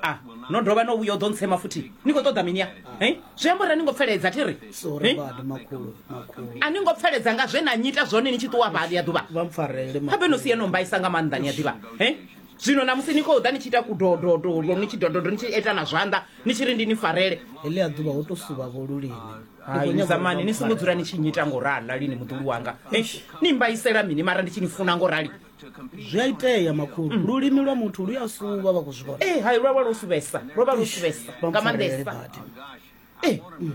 a no dovha no vhuya u ḓo ntsema futhi ni khou ṱoḓa mini a zwi amba uri a ni ngo pfeledza thi ri a ni ngo pfeledza nga zwe na nyita zwone ni tshi ṱuwa vhali ya ḓuvha habe no si ye no mbaisa nga maanḓa ni a ḓivha zwino na musi ni khou ḓa ni tshi ita kudododo ni tshi dododo ni tshi ita na zwanḓa ni tshi ri ndi ni farele heḽi a ḓuvha ho to suvha vho lulini haizamani ni songo dzula ni tshi nyita ngo rala lini muḓulu wanga ni mbaisela mini mara ndi tshi ni funa ngo rali zwi a itea makhulu mm. lulimi lwa muthu lu ya suvha vha khou zwi vhona ee hai lwa vha lwo suvhesa lwo vha lwo suvhesa nga maanḓesa ee eh, mm.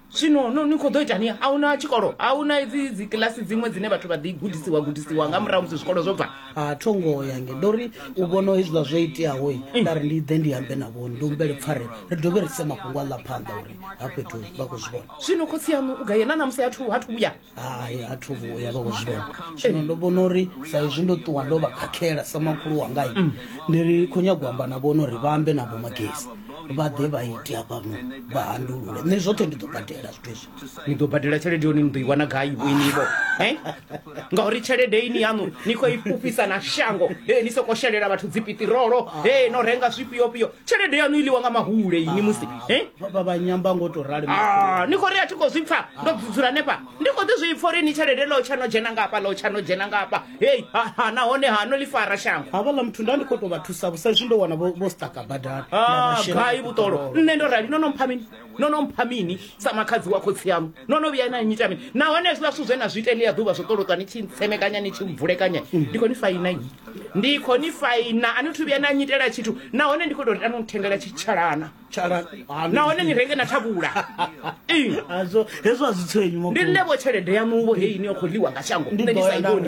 zwino no ni khou ḓo itani a hu na tshikolo a hu na dzi dzi kilasi dziṅwe dzine vhathu vha ḓi gudisiwa gudisiwa nga murahu musi zwikolo zwo bva a tho ngoho yange ndo ri u vhona hezwiḽa zwo iteaho mm. nda ri ndi ḓe ndi ambe na vhoni ndi humbele pfarelo ri dovhe ri se mafhungo a ḽa phanḓa uri ha fhethu vha khou zwi vhona zwino khotsi yanu u gaye na namusi hathu hathu vhuya hai a thu vhuya vha kozwivhona zwino ndo vhona uri sa izwi ndo ṱuwa ndo vha khakhela sa makhulu wangai mm. ndi ri khou nyago amba na vhona uri vha ambe na vhomagesi vha ḓe vha ite hafhano vha handulule nṋe zwoṱhe ndi ḓo badela zwithu izwi ni ḓo badela tshelede yoni ni ḓo i wana gai vhoinivo e ngauri tshelede ini yaṋu ni khou i fhufhisa na shango e ni soko shelela vhathu dzipitirolo e no renga zwifhiofhio tshelede yanu i ḽiwa nga mahule ini musi eh? vhanyamba ngo to rali ah, ni khou ri a thi khou zwi pfa ndo dzula hanefha ndi khou ḓi zwi pfa uri ni tshelede ḽo tsha no dzhena ngafha ḽo tsha no dzhena ngafha hei ha nahone ha no ḽi fara shango havhaḽa muthu nda ndi khou tou vha thusa vho sa izwi ndo wana vho staka badani ah, gai vhuṱolo nṋe ndo rali no no mpha mini no no mpha mini sa makhadzi wa khotsi aṋu no no vhuya na nyita mini nahone hezwiḽa zwithu zwe na zwi ita ḽia ḓuvha zwo ṱolotwa ni tshi ntsemekanya ni tshi mvulekanya ndi khou ni faina yi ndi khou ni faina a ni thu vhuya na nyitela tshithu nahone ndi khou tou tano nthengela tshitshalana nahone ni renge na thavhula hezwo a zwi tshenyu ndi nṋe vho tshelede yaṋuvho heyi ni yo khou ḽiwa nga shango nṋe ni sa i vhoni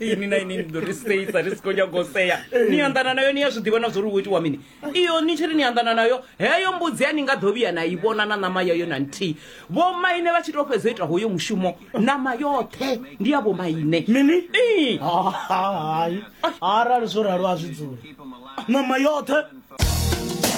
ini na ini ndi ḓo ri seisa ri si khou nyanga u sea ni anḓana nayo ni ya zwi ḓivha na zwo ri wo itiwa mini iyo ni tshi ri ni anḓana nayo heyo mbudzi ya ni nga ḓo vhuya na i vhona na ṋama yayo na nthihi vhomaine vha tshi tou fhedza u ita hoyo mushumo ṋama yoṱhe ndi ya vhomaine mini Ii. hai arali zwo ralo a zwi dzule ṋama yoṱhe